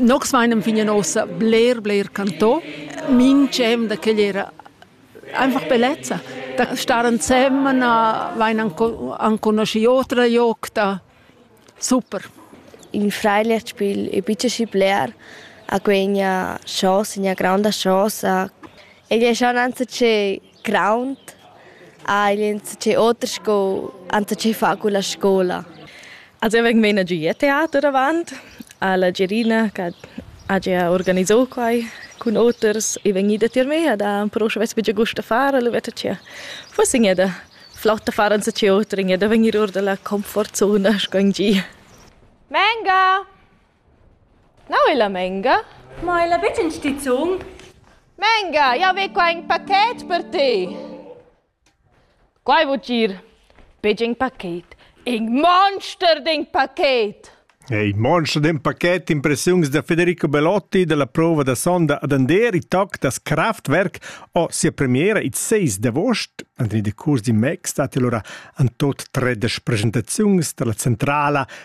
Nox meinem fignan ossa bler bler canto. Minch'em da quel era einfach bellezza. Da star ensemen vain anconuschi otra jocta. Super. Il fragliaspiel è bitte bler a quegna chausa, una grande chausa. Egli è schon anzi che Graunt ha el insatge oter sco enzatgei far culla scola. Az ei vegn menagiu teater avant a la Gerina che ha gia organisau quai cun oters e vegn ida tier me da però sche vess buca gust da far alla veta tgea. Forse gneda flott da far enzatgei oter gneda vegnir or dalla comfortzona sco in gi. Menga! Neu ella Menga? Ma ella betg en stizun? Menga, jau ve qua in pachet per te. Quai vul dir, betg in pachet, in monster d'in pachet. Il monster d'in pachet, impressiuns da Federico Belotti dalla prova da sonda ad Ander, il toc das Kraftwerk, o sia premiera il 6 d'avost. En il decurs di Mac stat allora en tot tredesch presentaziuns dalla centrala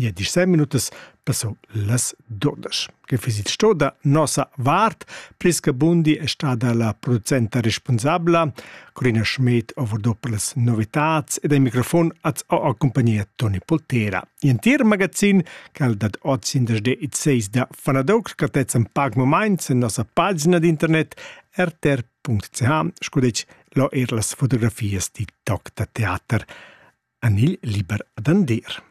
Ja disem minutas passo las duondas. Che füss il sto da nossa vart? Priska Bundi è stada la producenta responsabla, Corina Schmidt ho vardò per las novitats ed al microfon az ho a compagnia Toni Poltera. L'entir magazin che al dat oz in desde il 6 da Fanadoc scattezzan pac moments en nossa pagina d'internet rtr.ch scudec lo er las fotografias di toc da teater. Anil Liber ad Andir.